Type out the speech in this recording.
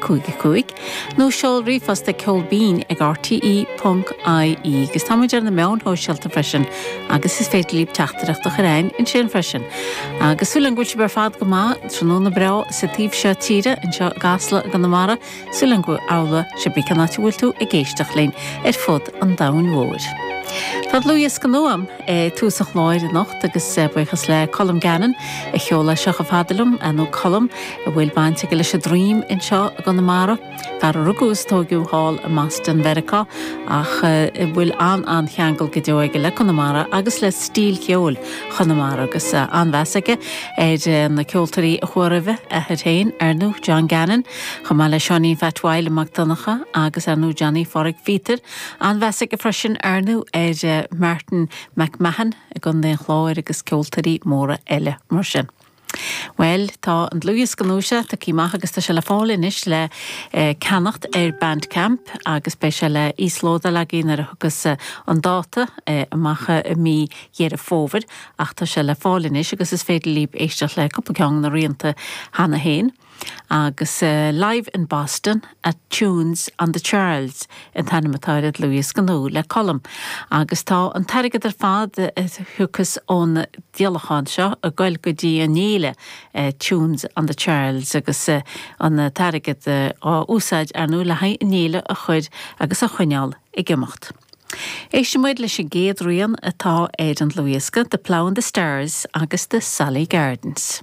5 5 nó seol ríomhphost ag Ceol Binn ag RTÉ.ie agus tá muid ar na meáin shóisialta freisin agus is féidir libh teachtaireacht a chur chugainn ansin freisin. Agus súil ann go bhfuil sibh ar fad go maith, tráthnóna breá sa taobh seo tíre, anseo i gCasla i gConamara, súil ann go bhfuil amhlaidh cibé cén áit a bhfuil tú ag éisteacht linn ar fud an domhain mhóir. Tá dlúthdhiosca nua agam ag tús an chláir anocht agus buíochas le Colm Gannon a sheol é seo chomh fada liom, nó Colm. a bhfuil baint aige leis an dream anseo i gConamara, fear a rugadh is tóigeadh thall i mBoston Mheiriceá ach a bhfuil an-an-cheangal go deo aige le Conamara agus le stíl cheoil Chonamara agus an-mheas aige ar na ceoltóirí a chuaigh roimhe, a athair féin ar ndú, John Gannon, chomh maith le Seáinín Pheait Mhaidhle Mac Donncha agus ar ndú Johnny Pháraic Phíotair. An-mheas aige freisin ar ndú ar Martin McMahon i gContae an Chláir agus ceoltóirí móra eile mar sin. Bhuel, tá an dlúthdhiosca nua seo tagtha amach agus tá sé le fáil anois le ceannacht ar Bandcamp agus beidh sé le íoslódáil againn nuair a thiocfas an dáta amach i mí Dheireadh Fómhair ach tá sé le fáil anois agus is féidir libh éisteacht le cúpla ceann de na rianta cheana féin. Agus Live in Boston at Tunes on the Charles an t-ainm atá ar an dlúthdhiosca nua le Colm. Agus tá an t-airgead ar fad a thiocfas ón díolachán seo ag goil go dtí an fhéile Tunes on the Charles agus an t-airgead á úsáid ar ndú le haghaidh an fhéile a chuir agus a choinneál ag imeacht. Éistimid leis an gcéad rian atá ar an dlúthdhiosca, The Plough and the Stars agus The Sally Gardens.